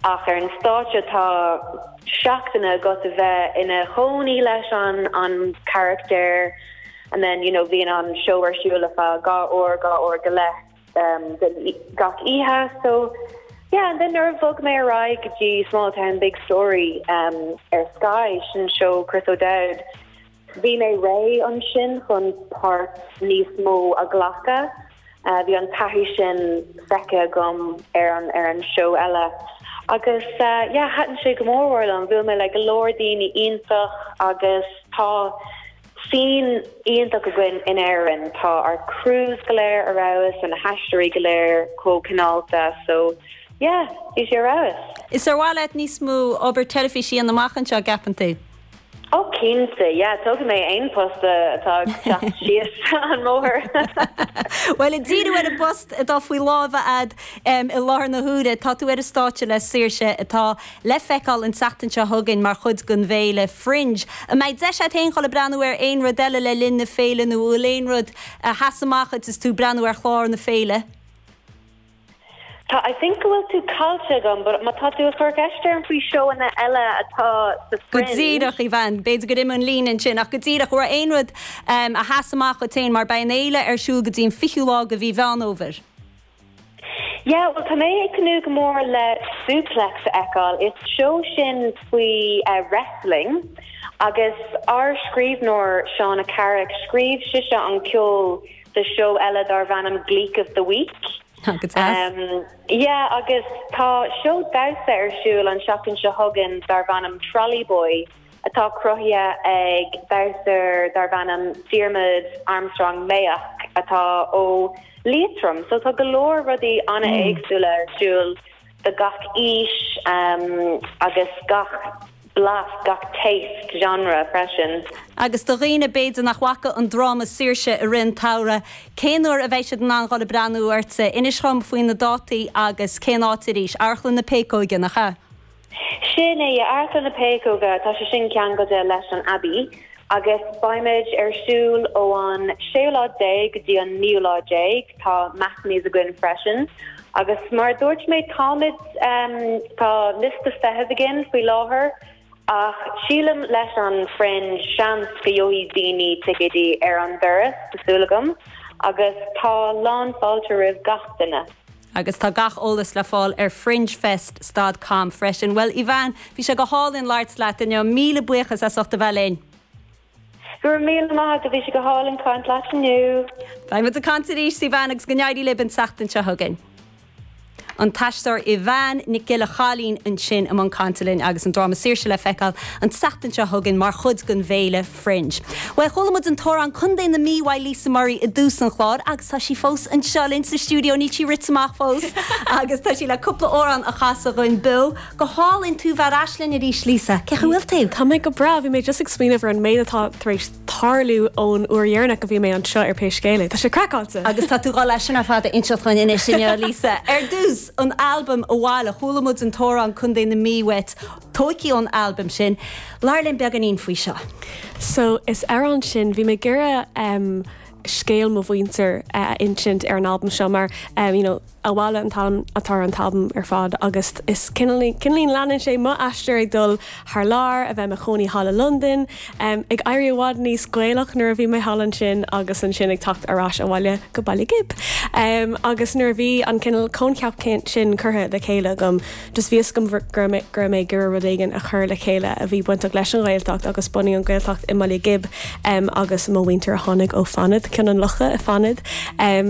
Ach ar an stáitse tá seachtainí agat a bheith ina chónaí leis an charachtar and then you know bhíonn an seó ar siúl ar feadh dhá uair, dhá uair go leith gach oíche so yeah and then nuair a bhog mé ar aghaidh go dtí Small Town Big Story ar Sky sin seó Chris O'Dowd, Bhí mé réidh ansin chun páirt níos mó a ghlacadh. Bhí an taithí sin feicthe agam ar an ar an seó eile agus yeah, thaitin sé go mór mór liom. Bhuail mé le go leor daoine iontach agus tá scene iontach againn in Éirinn. Tá ár crews go léir ar fheabhas and na haisteoirí go léir chomh cineálta so yeah, bhí sé ar fheabhas. Is ar mhaith leat níos mó obair teilifíse a dhéanamh amach anseo, an gceapann tú? Ó cinnte, yeah, tógfaidh mé aon post atá ag teacht síos an mbóthar. Bhuel, a' díriú ar an bpost atá faoi láimh a'ad i láthair na huaire, tá tú ar an stáitse le Saoirse? atá le feiceáil an tseachtain seo chugainn mar chuid den bhféile Fringe. An mbeidh deis a'at féin dhul ag breathnú ar aon rud eile le linn na féile nó an bhfuil aon rud a sheas amach agat is tú ag breathnú ar chlár na féile? Tá, yeah, I think go bhfuil tú caillte agam but má tá tú ag cur ceist orm faoi seóanna eile atá sa Fringe. Go díreach, Evanne. B'fhéidir gur imigh an líne ansin ach go díreach, an raibh aon rud a sheas amach dhuit féin mar beidh an fhéile ar siúl go dtí an fichiú lá de mhí Mheán Fhómhair? Yeah, bhuel tá mé ag tnúth go mór le Suplex a fheiceáil. Is seó sin faoi wrestling agus ár scríbhneoir Shauna Carrick, scríobh sise an ceol, do seó eile darbh ainm Gleek of the Week. Yeah agus tá seó damhsa ar siúl an tseachtain seo chugainn darbh ainm Trolley Boy atá cruthaithe ag damhsóir darbh ainm Diarmuid Armstrong Mayock atá ó Liatroim so tá go leor rudaí an-éagsúla ar siúl do gach aois agus gach blas, gach taste, genre freisin. Agus do dhaoine b'fhéidir nach bhfaca an dráma Saoirse? i rith an tsamhraidh, cén uair a bheidh siad in ann dhul ag breathnú oraibh? Inis dhom faoi na dátaí agus cén áit arís. Amharclann na Péacóige, nach ea? Sin é, Amharclann na Péacóige, tá sé sin ceangailte leis an Abbey agus beimid ar siúl ó an séú lá déag go dtí an naoú lá déag, tá matinees againn freisin. Agus mar a dúirt mé táimid, tá liosta feithimh againn faoi láthair ach sílim leis an Fringe seans go gheobhaidh daoine ticéidí ar an doras, tá súil agam, agus tá lán fáilte roimh gach duine. Agus tá gach eolas le fáil ar fringefest dot com freisin. Bhuel Evanne, bhí sé go hálainn labhairt leat inniu, míle buíochas as ucht a bheith linn! Go raibh míle maith agat, bhí sé go hálainn caint leat Ní bheidh muid ag caint anois faoi veain agus go n-éirí libh an tseachtain seo chugainn. An t-aisteoir Aoibheann Nic Giolla Chaillín ansin i mbun cainte linn agus an dráma Saoirse le feiceáil an tseachtain seo chugainn mar chuid den bhféile Fringe. Bhuel, chuala muid an t-amhrán Contae na Mí le Lisa Murray i dtús an chláir agus tá sí fós anseo linn sa stiúideo, níl sí rite amach fós agus tá sí le cúpla amhrán a chasadh dhúinn beo. Go hálainn, tú bheith ar ais linn arís Lisa, cén chaoi a bhfuil tú? Tá mé go breá, bhí mé just ag smaoineamh ar an méid atá tar éis tarlú ón uair dheireanach go bhí mé anseo ar pé scéal é, tá sé craiceáilte! Agus tá tú dul é sin ar fad a inseacht dhúinn anois inniu Lisa. Ar dtús, an albam Abhaile, chuala muid an t-amhrán Contae na Mí uait, tóigthí ón albam sin. Labhair linn beagáinín faoi seo. So, leis an amhrán sin, bhí mé ag iarraidh scéal mo mhuintir a insint ar an albam seo mar, you know, abhaile an t-ainm atá ar an t-albam ar fad agus is cineál leanann sé mo aistear ag dul thar lear, a bheith i mo chónaí thall i Londain, em, ag éirí i bhfad níos Gaelach nuair a bhí mé thall ansin agus ansin ag teacht ar ais abhaile go Baile Ghib, em, agus nuair a bhí an cineál coincheap sin curtha le chéile agam, Bhí a fhios agam go raibh mé ag iarraidh rud éigin a chur le chéile a bhí bainteach leis an Ghaeltacht agus bunú an Gaeltacht i mBaile Ghib agus mo mhuintir a tháinig ó Fanaid, Cionn an Locha i Fanaid.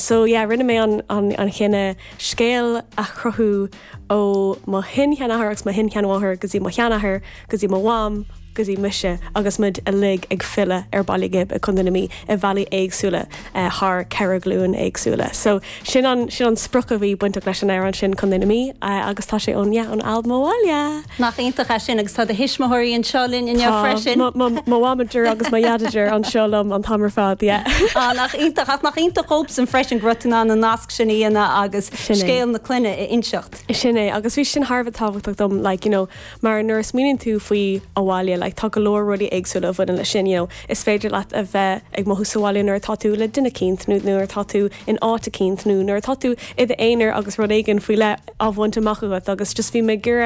So yeah, rinne mé an chinneadh scéal a chruthú ó mo shin-sheanathair agus mo shin-sheanmháthair go dtí mo sheanathair, go dtí mo mham, go dtí mise agus muid uilig ag filleadh ar Baile Ghib i Co. na Mí i bhealaí éagsúla thar ceithre ghlúin éagsúla. So sin an sin an sprioc a bhí bainteach leis an amhrán sin Contae na Mí agus tá sé ón yeah ón albam Abhaile! Nach iontach é sin agus tá do thuismitheoirí anseo linn inniu freisin. Tá mo mo mhamadir agus mo dhadadir anseo liom an t-am ar fad yeah. Á nach iontach ach nach iontach dhóibhsean freisin go raibh tú in ann an nasc sin a dhéanamh agus scéal na clainne a inseacht. Sin é agus bhí sin thar a bheith tábhachtach dom like you know, Mar nuair a smaoiníonn tú faoi abhaile like tá go leor rudaí éagsúla a bhaineann leis sin you know. Is féidir leat a bheith ag mothú sa bhaile nuair atá tú le duine eicínt nó nuair atá tú in áit eicínt nó nuair atá tú i d'aonar agus rud éigin faoi leith á bhaint amach agat agus just bhí mé ag iarraidh